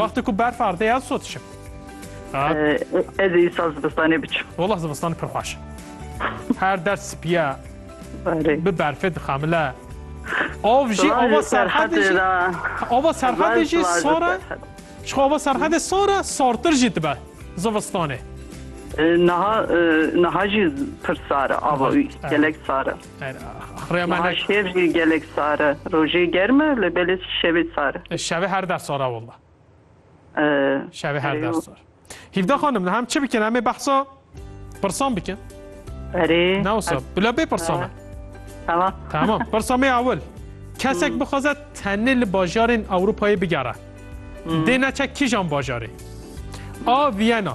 Wextê ku berf ardê ya sot şim. Ez ê îsal zivistanê biçim. Wala zivistan pir xweş. Her der spiye bi berfê dixemile. Av jî ava serhedê jî ava serhedê jî sara ji ava serhedê sara sartir jî dibe zivistanê. Niha niha jî pir sara ava wî gelek sara. Niha şev jî gelek sar e. Rojê germ e lê belê şevê sar e. Şevê her der sar e wela. Şevê her der sar. Hîvda xanim li hem çi bikin em ê behsa pirsan bikin. Erê. Ne wisa bila bê pirsa me. Tamam. Tamam. Pirsa me ya wil. Kesek bixwaze tenê li bajarên Ewropayê bigere. Dê neçe kîjan bajarê? A Viyena.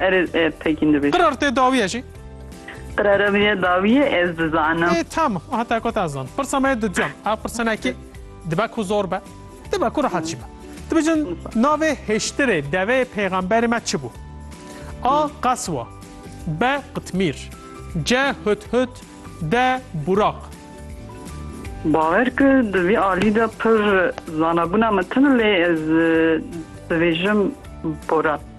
Erê pekîn dibêj. Qirar tê dawiye jî. Qirara min ya dawiye ez dizanim. Ê tamam heta ku ta zan. Pirsa me di can. Ev pirsenekî dibe ku zor be. Dibe ku rahat jî be. Dibêjin navê hêştirê deveyê pêxemberê me çi bû? A. Qeswa B. Qitmîr C. Hudhud D. Buraq Bawer ki di vî alî de pir zanabûna min tune lê ez dibêjim Buraq.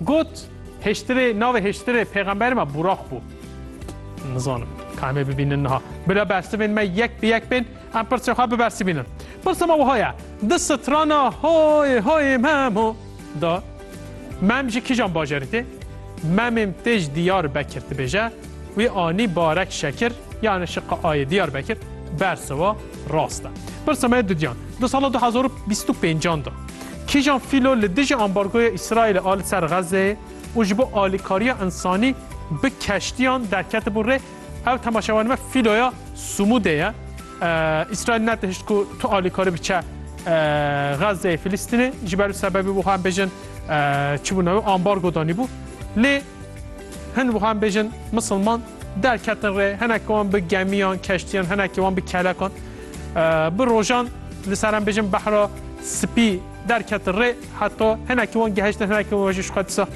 Got, Hêştirê, navê hêştirê pêxemberê me Buraq bû. Nizanim, ka em ê bibînin niha. Bila bersivên me yek bi yek bên, em pirsên xwe bibersivînin. Pirsa me wiha ye, di strana Hoyê hoyê memo de mem ji kîjan bajarî tê? Memêm tê ji Diyarbekir dibêje, wî anî barek şekir, yani şiqa ayê Diyarbekir, bersiva Rast e. Pirsa me didiyan. Di sala du hezar û bîst û pêncan de kîjan fîlo li dijî ambargoya Îsraîlê a li ser Xezzeyê û ji bo alîkariya însanî bi keştiyan derketibû rê, ew temaşevanê me fîloya Sumûdê ye. Îsraîl netihişt ku tu alîkarî biçe Xezzeyê Filîstînê ji ber wî sebebê bû hem bêjin çi bû navê ambargo danîbû. Lê Hin wiha bêjin misilman derketin rê hinekî wan bi gemiyan, keştiyan, hinekî wan bi kelekan. Bi rojan li ser em bêjin behra spî derketin rê heta hinekî wan gehiştin hinekî wan jî xwe disa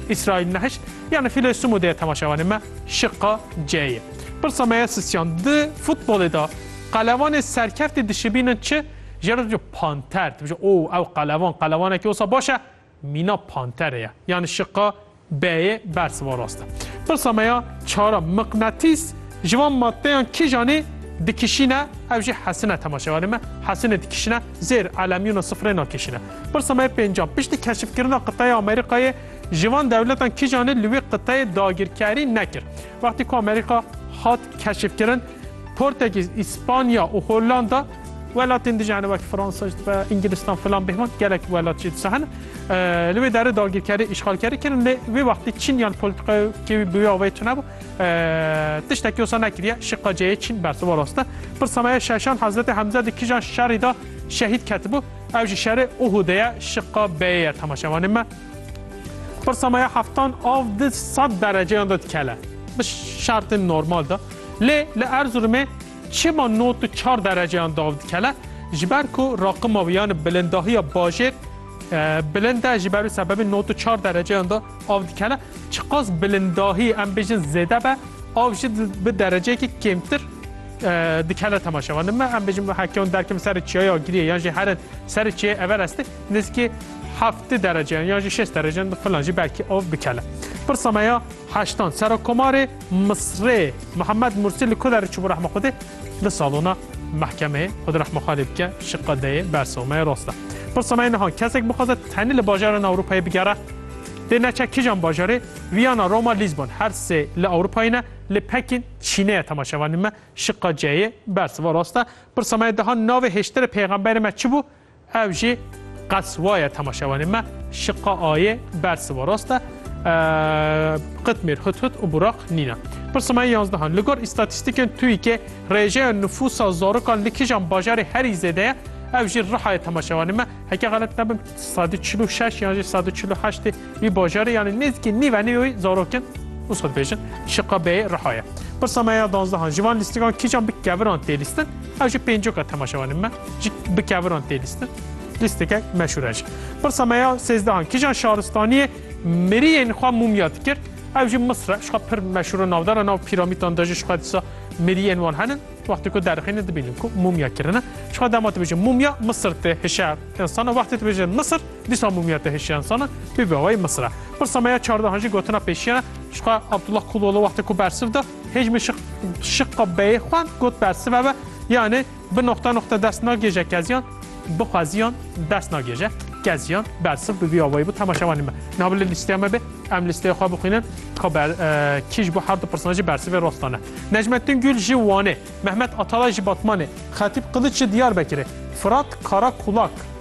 İsrail nehişt. Yani fîlê Sumu dê temaşevanê me şiqa C'yê. Pirsa me ye sisyan di futbolê da qelevanê serkeftî dişibînin çi? Jero dibêje panter dibêje o ew qelevan qelevanekî wisa baş e Mîna pantere ye. Yanî şiqa B'yê bersiva rast e. Pirsa me ya çar a, miqnatîs ji van maddeyan kîjan ê dikişîne ev jî hesine temaşevanê me hesinê dikişîne zêr elemyûna sifrê nakişîne. Pirsa me ya pênc a, piştî keşifkirina qiteya Amerîkayê ji van dewletan kîjan ê li wê qiteyê dagirkerî nekir? Wextî ku Amerîka hat keşifkirin portekîz, Îspanya û Hollanda, Welatên dijî hene wek Fransa jî dibe, Îngilîstan filan bêhman gelek welat jî disa hene. Li wê derê dagirkerî, îşxalkerî kirin lê wê wextî Çîn yan polîtîkaya kê wî bi wê avayî tune bû. Tiştekî wisa nekiriye şiqaceyê Çîn bersiva rast e. Pirsa me ye Şeşan Hezretê Hemze di kijan şerî de şehîd ketibû? Ew jî şerê Uhûdê ye şiqa beyê ye temaşevanên me. Pirsa me ye heftan av di sed dereceyan de dikele bi şertên normal de. Lê li Erzurumê Çima not û çar dereceyan dav dikele? Ji ber ku raqima wî yan bilindahiya bajêr bilind e, ji ber wî sebebê not û çar dereceyan da av dikele. Çiqas bilindahî em bêjin zêde be, av jî bi dereceyekî kêmtir dikele temaşevan. Nime em bêjin hekeyan derkevin serê çiyayê Agiriyê yan jî herin serê çiyayê Everestê nizkî heftê dereceyan yan jî şeş dereceyan filan jî belkî av bikele. Pirsa me ya heştan sera komarê Misrê Mihemed Mursî li ku derê çûbû rehma Xwedê di salona mehkemeyê Xwedê rehma Xalê bike ji qedeyê bersa me rast e. Pirsa me niha kesek bixwaze tenê li bajaran Ewropayê bigere dê neçe kijan bajarê Viyana, Roma, Lîsbon her sê li Ewropayê ne li Pekîn, Çînê ye temaşevanî me ji qeceyê bersiva rast e. Pirsa me diha navê hêştirê pêxemberê me çi bû? Ev jî qet waye temaşevanê me şiqa ayê bersiva rast e qitmêr hut hut û buraq nîne. Pirsa me yanzdehan li gor îstatîstîkên TÜİK'ê rêjeya nifûsa zarokan li kîjan bajarê herî zêde ye ev jî rihayê temaşevanê me heke xelet nebim sedî çil û şeş yan jî sedî çil û heştê Wî bajarê yanî nêzîkî nîv enê yoyî zarokin û sod bêjin şiqa beyê riha ye. Pirsa me ya danzdehan ji van lîstigan kîjan bi keviran tê lîstin? Ew ji pêncoka temaşevanên me ji bi keviran tê lîstin. Lîstikek meşhûr e jî. Pirsa me ya sêzdehan kîjan şaristaniyê miriyên xwe mûmya dikir? Ew ji Misr e. Şiqa pir meşhûr û navdar e nav pîramîtan de jî şiqa dîsa miriyên wan henin. Wextê ku derixînin dibînin ku mûmya kirine. Şiqa dema dibêjin mûmya Misir tê hişe insana wextê dibêjin Misir Dîsa mûmîya te hişiyan sana pê bawayê Misir e. Pirsa me ya çardehan jî gotina pêşiyan e. Jixwe Abdullah Kulolo wextê ku bersiv da hêjmê şiq şiqa beyê xwe got bersive be yanê bi noqte noqte dest nagêje keziyan bixweziyan dest nagêje keziyan bersiv bi vî awayî bû tema şevanî me. Niha bi li lîsteya me bê em lîsteya xwe bixwînin ka ber kî ji bo her du pirsana jî bersivê rostan e. Necmettin Gül ji Wanê, Mehmet Atalay ji Batmanê, Xetîb Qiliç ji Diyarbekirê, Firat Karakulak,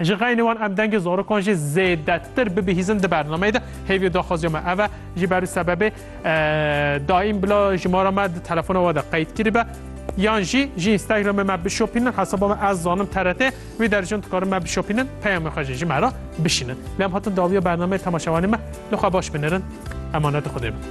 Ji xeynê wan em dengê zarokan jî zêdetir bibihîzin di bernameyê de. Hêviyo daxwaziya me ev e. Ji ber û sebebê daîm bila jimara me di telefona we de qeyd kiribe. Yan jî ji Instagramê me bişopînin hesaba me ez zanim TRT wî derciyan dikarin me bişopînin peyamê xwe jî ji me re bişînin. Lê em hatin dawiya bernameyê temaşevanê me li xwe baş binirin. Emanetê Xwedê bin.